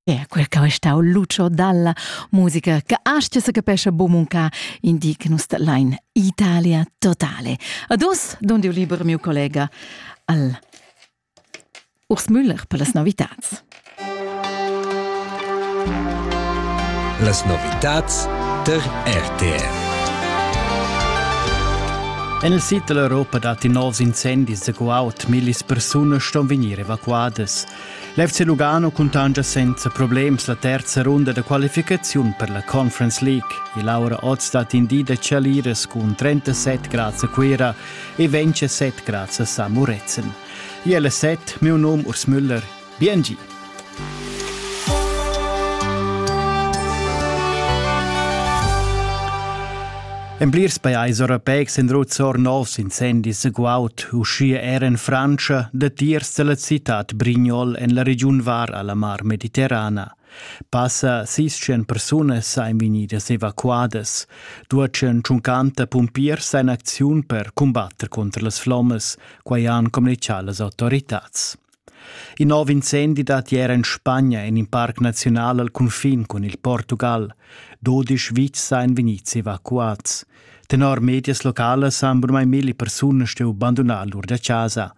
E quel che è stau Lucio dalla musica che astga se capesce bumunca indic nus line Italia totale. Adus, don diu liber mio collega al Urs Müller per las novitats. Las novitats ter RTR. En il sid dell'Europa datti novs incendis da guaud. Millis persone ston vegnir evacuadas. L'FC Lugano cuntanscha senza problems la terza runda da qualificaziun per la Conference League e Laura Oz stat in di da chaliras cun 37 grads a Cuira e vence 7 grads a San Murezzan. Iel è 7, meu num Urs Müller. Bien gi! En plirs pajais europeics han ruzzor novs incendis guaud, uschia er en Frantscha, datiers dalla citad Brignol en la regiun var alla Mar Mediterrana. Passa sis cent persunas ein vegnidas evacuadas. Duatschen tschuncanta pumpiers ein acziun per cumbatter contro las flommas, quai han communichà las autoritads. In nov incendi dat ier en Spagna en in parc naziunal al cunfin cun il Portugal. Dodisch vitgs ein vegnids evacuads. Tenor medias localas han burmai milli persunas stuiu bandunar lur da casa.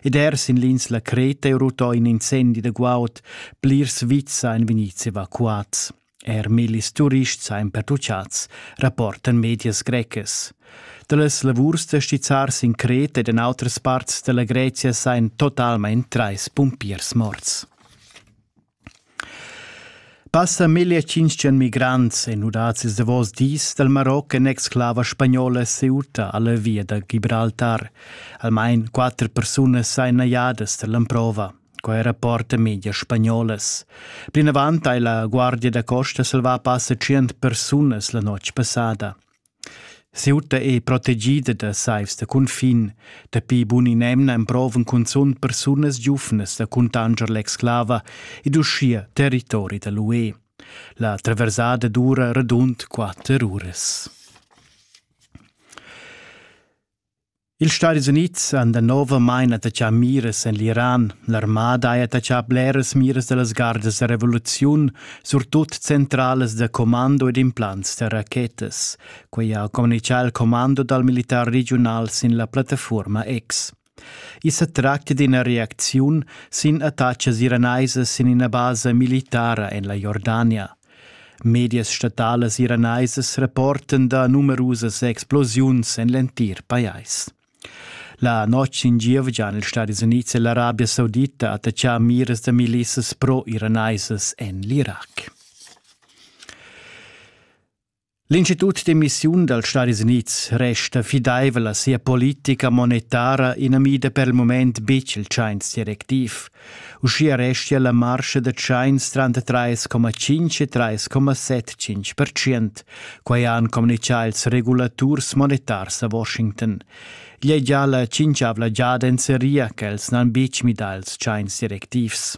Ed er sin l'insla Creta è rutto in incendi da guaud. Plirs vitgs ein vegnids evacuads. Er millis turists ein pertucciats, rapportan medias grecas. Dallas lavurs da stizzar sin Creta ed en outras parts dalla Grezia sein totalmein treis pumpiers morts. Passa 1500 migrants e nudats ils davos dis dal Maroc en exclava spagnola Ceuta alla via da Gibraltar. Almain quatter persunas sein najadas dall'emprova. Quei rapporta media spagnolas. Plinavant ha la Guardia da costa salvà passa tschient persunas la notg passada. Ceuta è protegida da saivs da cunfin. Dapi bun'in'emna emprovan cunzunt persunas giuvnas da cuntanger l'exclava ed uschia territori da l'UE. La traversada dura radund quatter uras. Ils Stadis Unids han danovamein attaccà miras en l'Iran. L'armada ha attaccà bleras miras da las gardas da revoluziun, surtut centralas da commando ed implants da rachetas. Quei ha communicà il commando dal militar regiunal sin la plattafuorma X. I sa tracta d'ina reacziun sin attacas iraneisas sin ina basa militara en la Jordania. Medias statalas iranaisas rapportan da numerusas explosiuns en l'entir pajais. La notg in gievgian ils Stadis Unids e l'Arabia Saudita attacchà miras da milissas pro-iranaisas en l'Irac. L'institut d'emissiun dals Stadis Unids resta fidaivel a sia politica monetara inamida per il mument betg il tschains directiv. Uschia restia la marcha da tschains tranter 3,5 e 3,75%. Quai han communitgà ils regulaturs monetars a Washington. Igl è già la cinquavla giada en seria ch'els n'han betg midà ils tschains directivs.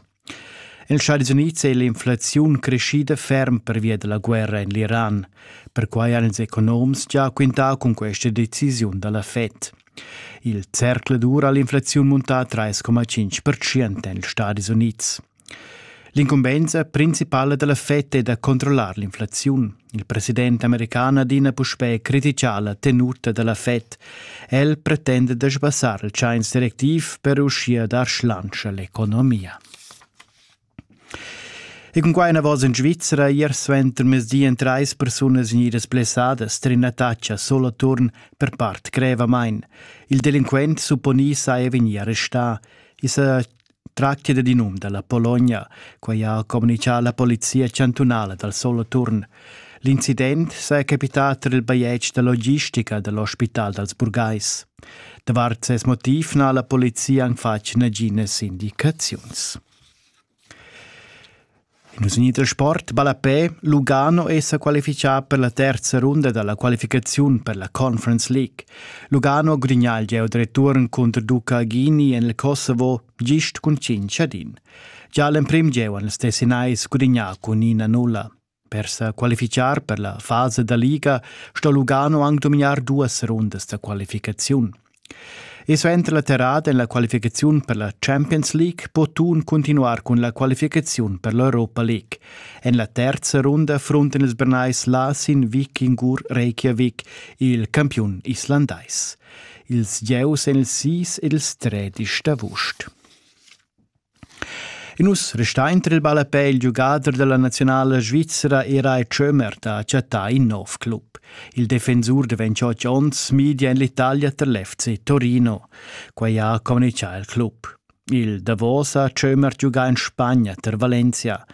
Ils Stadis Unids è l'inflaziun creschida ferm pervia da la guerra en l'Iran. Perquai han ils economs gia quintà cun questa decisiun da la Fed. Il zercladur ha l'inflaziun muntà 3,5% en ils Stadis Unids. L'incumbensa principala da la Fed è da controllar l'inflaziun. Il president american adina puspè critica la tenuta da la Fed. El pretenda da sbassar il tschains directiv per uschia dar schlansch a l'economia. E cun quai enavos en Svizzera ier suenter mezdi en trais persunas vegnidas blessadas trin attacca solo turn per part grevamain. Il delinquent supponì sa è vegnì arrestà. I sa Tratga dad in um dalla Pologna, quai ha communitgà la polizia chantunala dal Soloturn. L'incident saja capità tar il bajetg da logistica da l'ospital dals burgais. Davart ses motiv n'ha la polizia anc fatg naginas indicaziuns. In usigni da sport ballapè Lugano è sa qualifichà per la terza runda da la qualificaziun per la Conference League. Lugano gudignà il gieu da return cunter Duca Ghini en il Kosovo gist cun cinc ad in. Già l'emprim gieu han ils Tessinais gudignà cun ina nulla. Per sa qualifichar per la fasa da liga sto Lugano anc dominar duas rundas da qualificaziun. E suenter la terrada en la qualificaziun per la Champions League po Thun cuntinuar cun la qualificaziun per l'Europa League. En la terza runda frunten ils Bernais là sin Vikingur Reykjavik, il campiun islandais. Ils gieus en il 6 ed ils 3 d'avust. Nus restain tra il ballapè il giugader da la naziunala svizra Erai Schömer da chattar in nov club. Il defensur da 28 onns media en l'Italia tar l'FC Torino. Quai ha communitgà il club. Il davos ha Schömer giugà en Spagna tar Valencia.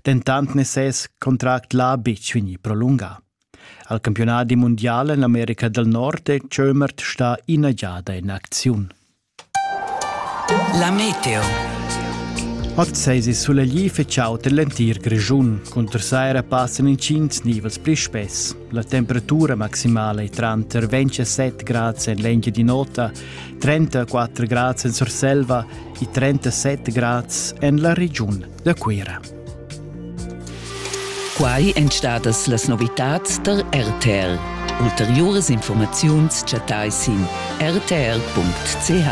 Dentant n'è ses contract là betg vegnì prolungà. Al campionat mundial en l'America dal Nord è Schömer stà ina giada en acziun. La meteo. Ot sesi sulegli feciaut l'entir Grischun. Cunter saira passan incints nivels pli spess. La temperatura maximala è tranter 27 grads en l'engia di nota, 34 grads en Surselva e 37 grads en la regiun. da Cuira. Quai èn stadas las novitads tar RTL. Ulteriuras informaziuns chattai sin rtl.ch.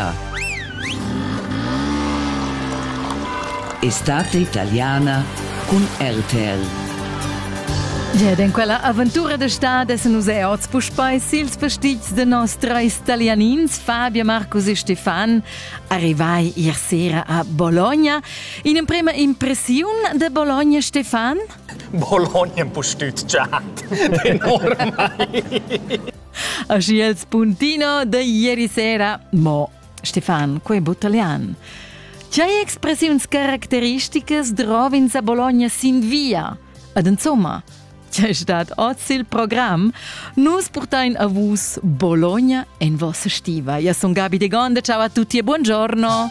Estate italiana cun RTL. Ed en quella aventura d'estate essen nus er oz puspei sils vestits de nos treis italianins, Fabio, Marcus e Stefan, arrivai ier sera a Bologna In'emprema impressiun de Bologna, Stefan? Bologna empustütschat, enormai. Aschi els puntino de ieri sera. Mo, Stefan, quei butalian. C'hai expressiuns caracteristicas drovins a Bologna sin via? Ed insomma, c'è stat oz il program, nus portain a vus Bologna en vossa stiva. Io sono Gabi De Gonda, ciao a tutti e buongiorno.